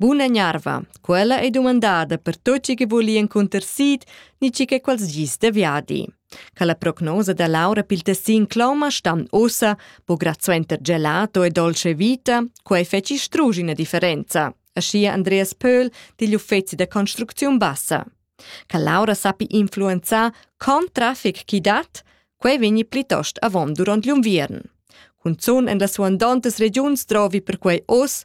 Buna gnarva, quella ei dumandada per tot chi che voli encunter sid ni chi che quals gis de viadi. Ca la prognosa da Laura pil tessin cloma stam ossa, bo grazuenter gelato e dolce vita, quei feci strugi una differenza, aschia Andreas Pöhl digl uffeci da construcziun bassa. Ca Laura sappi influenzar con traffic chi dat, quei vegni plitost avon duront gl'unviern. Cunzun en las suandontas regiuns trovi perquei oss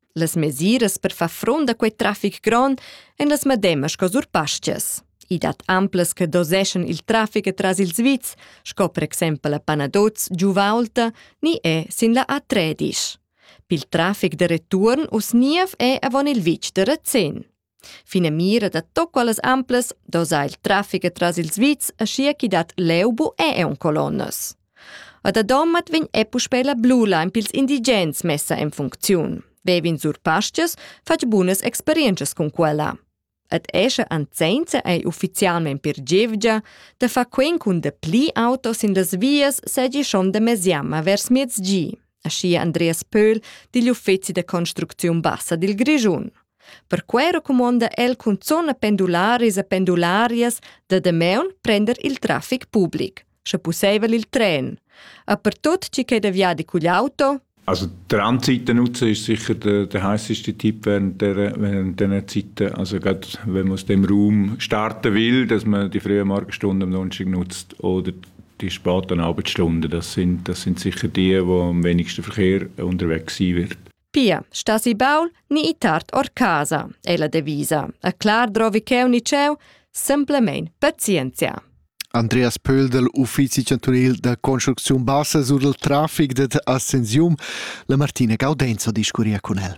Las mesiras per far front a quei traffic grond ein las medemas sco sur pastas. I dat amplas che doseschan il traffic tras ils vits, sco per exempel a Panadoz, Giuvaulta, ni è sin la A13. Pil traffic de return us niev è avon il vitg de Rezin. Finamira da to quellas amplas doza il traffic tras ils vits aschia chi dat leu bu e eun colonnas. A da Domat vegn e puspei la blula in pils indigens messa en funcziun. Vevin sur pastgas fatg bunas experienzas cun quella. Ad escha anzenza ei ufficialment per gevgia da far quen cun de pli auto sin las vias segi schon de mesiamma vers miezgi. aschia Andreas Pöhl digl uffeci da construcziun bassa dil Grischun. Perquei recumonda el cunzun a pendularis e pendularias da Dameun prender il traffic public, sche pusseivel il tren. A per tut chi che da viadi cugl auto, also Transitnutzer ist sicher der, der heißeste Tipp während der, während der Zeit. Also gerade wenn man aus dem Raum starten will, dass man die frühen Morgenstunden am Donnerstag nutzt oder die spart eine halbe Stunde. Das sind, das sind sicher die, die am wenigsten Verkehr unterwegs sein wird. Pia, stasi baul ni i tard or casa, è la devisa. A clar drovi cheu ni cheu, semplamein pazienzia. Andreas Pöhl del Uffizi chantunil da construcziun bassa sur il traffic dad Ascensium, la Martina Gaudenzo discuria con el.